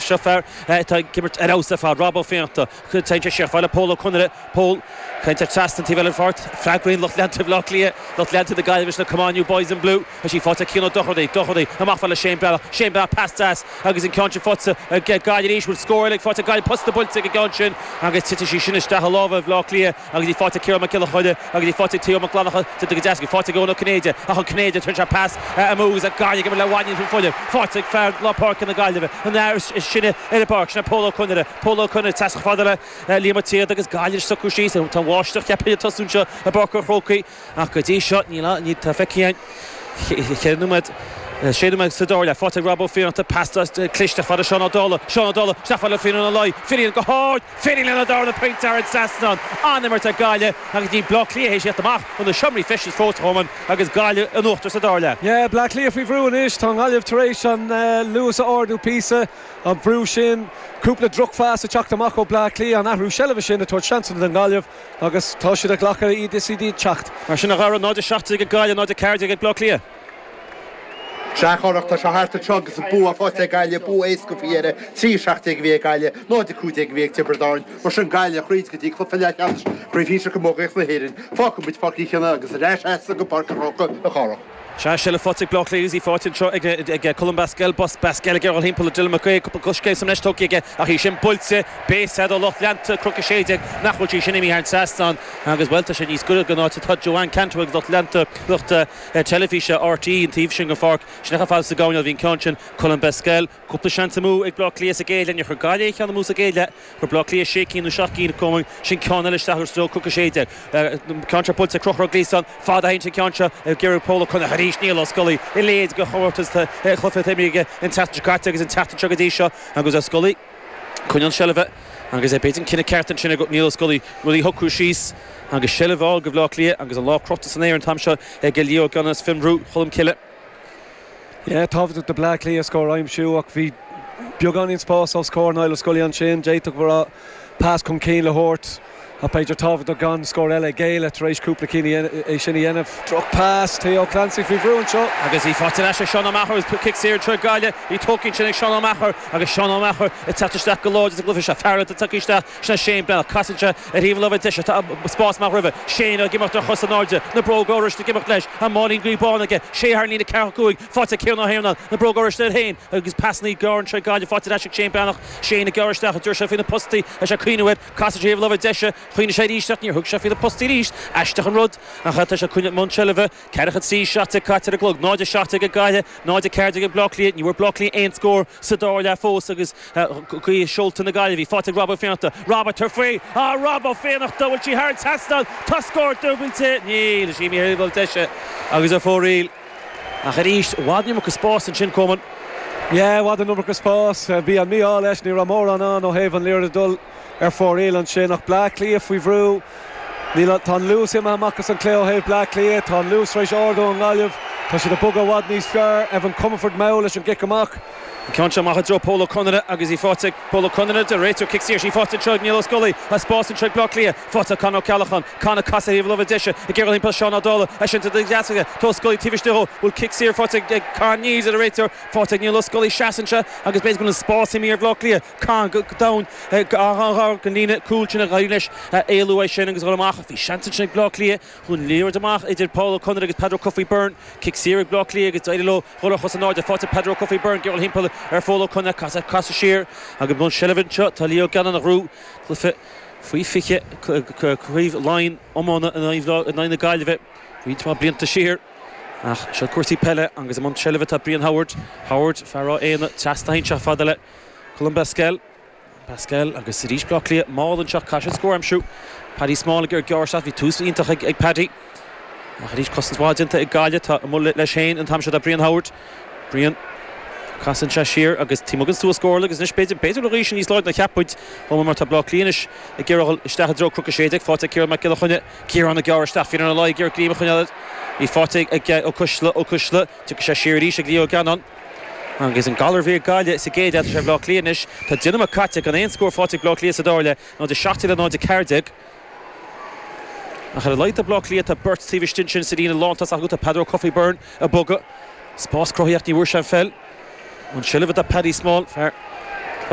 Seo fear atá ag imirt ar fheabhas ar fad, Rob Ó Fiannachta. Téann sé siar fada le Pól Ó Conaire. Pól, téann sé trasna an taobh eile den pháirc. Freagraíonn lucht leanta Bhaile Átha Cliath, lucht leanta na Gaillimhe leis an Come on you boys in blue! Tá sí faighte ag Cian Ó Dorchaí. Dorchaí, amach fada le Shane Breathnach. Shane Breathnach, pas deas agus an ceann sin faighte ag Gaillimh arís. Bhfuil scór eile faighte ag Gaillimh. Posta buailte ag an gceann sin agus titfidh sí sin isteach i lámha Bhaile Átha Cliath. Agus í faighte ag Ciarán Mac Giolla Chainnigh agus í faighte ag Theo Mac Fhlannacha, déanta go deas, í faighte ag Eoin Ó Cinnéide, ach an Cinnéideach, rinne sé pas amú agus é gan ag imirt le Mhaighnín faoi Fuilim, faighte ag fear lár páirce na Gaillimhe, an fear is sine ar an bpáirc, sin é Pól Ó Conaire, Pól Ó Conaire, trasna fada le Liam Ó Síoda agus Gaillimh ag socrú síos, tá an bháisteach ceapaim ag tosú anseo i bPáirc an Chrócaigh. ach go dtí seo níl a fhios ag feiceáil an ceithre nóiméad, sé nóiméad sa dara leath, faighte ag Rob Ó Fiannachta, pas cliste fada le Seán Ó Dálaigh, Seán Ó Dálaigh isteach fada le Finnian Ó Laoi, Finnian go hard, Finnian lena darna pointe thar an trasnán! An-imirt ag Gaillimh agus níl Bleá Cliath théis thíocht amach ó na seomraí feistis fós, a Choman, agus Gaillimh in uachtar sa dara leath. Yeah, Bleá Cliath faoi bhrú anois, tá an Ghaillimh tar éis an luas a ardú píosa, an brú sin, cúpla drochphas ag teacht amach ó Bleá Cliath, an athrú seilbhe sin ag tabhairt seansanna don nGaillimh. Agus tá siad ag glacadh iad is iad ag teacht. Mar sin a gharadh, 0, 17 ag Gaillimh, 0, 14 ag Bleá Cliath. Sea a Chárthaigh, tá sé thart anseo agus an bua faighte ag Gaillimh, bua éasca faoi dheireadh. 3, 17 a bhí ag Gaillimh, 0, 15 a bhí ag Tiobraid Árann. Mar sin Gaillimh thríd go dtí cluiche leathcheannais chraobh shinsir camógaíochta na hÉireann. Fágfaidh muid Páirc Uí Chionnaith agus ar ais agatsa go Páirc an Chrócaigh a Chárthaigh. Sea seilbh faighte ag Bleá Cliath agus í faighte anseo ag Colm Basquel. Bas, Basquel ag iarraidh a dhul timpeall ar Dylan McHugh, cúpla coiscéim sa mbreis tugtha aige ach í sin buailte, beidh a fhios agat ó lucht leanta Chnoc 16 nach bhfuil sí sin imithe thar an trasnán agus bhuel tá sé níos goire don áit atá Joanne Cantwell agus lucht leanta, lucht teilifíse RTÉ an taobh sin den pháirc. Sin é chomh fada sa gcoirnéal a bhí an ceann sin, Colm Basquel, Cúpla seans amú ag Bleá Cliath sa gcéad leath. Níor chuir Gaillimh aon cheann amú sa gcéad leath. Fuair Bleá Cliath sé cinn nó seacht gcinn acu, ansin ceann eile isteach go sluaite Chnoc a sé déag. An ceann seo buailte ag Conchúr Ó Gliasáin fada thairis an ceann seo ag iarraidh Pól Ó Conaire arís. Niall Ó Scolaí i léig do chomórtas chluiche Teamhraigh aige an tseachtain seo caite agus an tseachtain seo go dtí seo agus Ó Scolaí ag coinneáil an tseilbhe agus b'fhéidir an cinneadh ceart ansin ag Niall Ó Scolaí rudaí a shocrú síos agus seilbh a fháil do Bhleá Cliath agus an lámh crochta san aer an t-am seo ag Lee Gannon as Fionnbhrú Cholmcille. Yeah, tábhachtach do Bhleá Cliath scór a aimsiú ach bhí beagáinín spáis os comhair Niall Ó Scolaí ansin, d'fhéadfadh go raibh pas chun cinn le thabhairt ach b'fhéidir tábhachtach gan scór eile a ghéilleadh tar éis cúpla cinn é sin a dhéanamh. Drochphas, Theo Clancy faoi bhrú anseo. Agus í faighte ar ais ag Seán Ó Meachair agus cic saor d'fhir Ghaillimh, bhí an t-ádh ansin ag Seán Ó Meachair agus Seán Ó Meachair ag teacht isteach go láidir sa gcluiche seo, fear eile atá tagtha isteach Sin é Shane Breathnach. Casann sé ar thaobh an láimhe deise. Tá an spás amach roimhe. Shane ag imeacht ar chos in airde. Na bróga oráiste ag imeacht leis. An máilín gaoithe bán aige. Sé thar an líne ceathracha cúig. Faighte ag Cian Ó hIarnáin. Na bróga oráiste air féin agus pasannaí gearra anseo ag Gaillimh. Faighte ar ais ag Shane Breathnach. Shane ag gearradh isteach. An dtabharfaidh sé faoi na postaí. Bhí sé ag cuimhneamh air. Casann sé ar thaobh an láimhe deise. Chuimhnigh sé arís ach níor thug sé faoi na postaí arís. Aisteach an rud. Ach tá sé i gcónaí i mbun seilbhe. Ceathracha seacht caite ar an gclog, 0 17 ag Gaillimh, 0 14 ag Baile Átha Cliath. Ní bhfuair Baile Átha Cliath aon scór sa dara leath fós agus gaoth i seolta na Gaillimhe faighte ag Rob Ó Fiannachta. Rob, ag tabhairt faoi! Ah, Rob Ó Fiannachta! Bhfuil sí thar an trasnán? Tá scór dúbailte? Níl sí, imithe thaobh na láimhe deise agus ar fóraoil. Ach arís, i bhfad an iomarca spáis ansin, a Choman. Yeah, i bhfad an iomarca spáis. Bhí an mí-ádh leis, ní raibh mórán ann ó thaobh an liathróid a dhul. ar fóraoil ansin ach Bleá Cliath faoi bhrú. Níl an, tá an luas imithe amach as an gcluiche ó thaobh Bleá Cliath, tá an luas tar éis ardú ón nGaillimh, tá siad ag bogadh i bhfad níos fearr, Evan Comerford mall leis an gcic amach. An ceann seo amach i dtreo Pól Ó Conaire agus í faighte ag Pól Ó Conaire, deir an réiteoir, cic saor, is í faighte anseo ag Niall Ó Scolaí, tá spás anseo ag Bleá Cliath, faighte ag Con Ó Ceallacháin, Con ag casadh thaobh láimhe deise ag iarraidh dhul thimpeall Seán Ó Dálaigh, é sin de dheas aige, tá Ó Scolaí taobh istigh dhó, bhfuil cic saor faighte ag Con, níl, deir an réiteoir, faighte ag Niall Ó Scolaí, seasann sé agus b'fhéidir go bhfuil an spás imithe ar Bhleá Cliath, Caithfidh go raibh domhain ag an líne chúil sin ach d'éirigh leis éalú as sin agus dhul amach. Bhí seans ansin ag Baile Átha Cliath. Dhún liathróid amach idir Paul Ó Conaire agus Peadar Ó Cofaigh Byrne. Cic saor ag Baile Átha Cliath agus d'éirigh leo dhul ar chos in airde. Faighte ag Peadar Ó Cofaigh Byrne ag iarraidh dhul thimpeall ar Phól Ó Conaire. Casadh siar agus i seilbh anseo tá Lee Gannon, a ghrú cluiche faoi 20 Craobh Laighean iomána in aghaidh na Gaillimhe roinnt mhaith blianta siar. Ach seo cúrsaí peile agus i mbun seilbhe tá Brian Howard. Howard, fear Ráth Éanna, trasna a sheinnteach fada le. Colm Basquel, Basquel agus arís Baile Átha Cliath mall anseo caithfidh siad scór a aimsiú. Paddy Small ag ar geárr seo, bhí tús iontach ag ag Paddy. Ach arís cosaint mhaith déanta ag Gaillimh, tá a mholadh leis féin an t-am seo do Brian Howard. Brian, casann sé siar agus Tim Huggins suas scór agus anois b'fhéidir, b'fhéidir an ghaoth níos láidre ná cheap muid, chomh maith mar tá Baile Átha Cliath anois ag iarraidh dhul isteach i dtreo Cnoc a Sé Déag, faighte ag Ciarán Mac Giolla Chainnigh, Ciarán ag gearradh isteach fireann ar a laghad ag iarraidh greim a choinneáil ar, í faighte ag, ag, Ó Coisdealbha, Ó Coisdealbha, tiocfaidh sé siar arís ag Lee Gannon. Agus an galar a bhí ag Gaillimh sa gcéad leath tá sé ar Bhaile Átha Cliath anois, tá deich nóiméad caite gan aon scór faighte ag Baile Átha Cliath sa dara leath, 0-17 le 0-14. Ach ar a laghad do Bhaile Átha Cliath tá beirt taobh istigh ansin sa líne lán tosaigh acu, tá Peadar Ó Cofaigh Byrne ag bogadh, spás cruthaithe ach ní bhfuair sé an pheil, i seilbh tá Paddy Small, fear.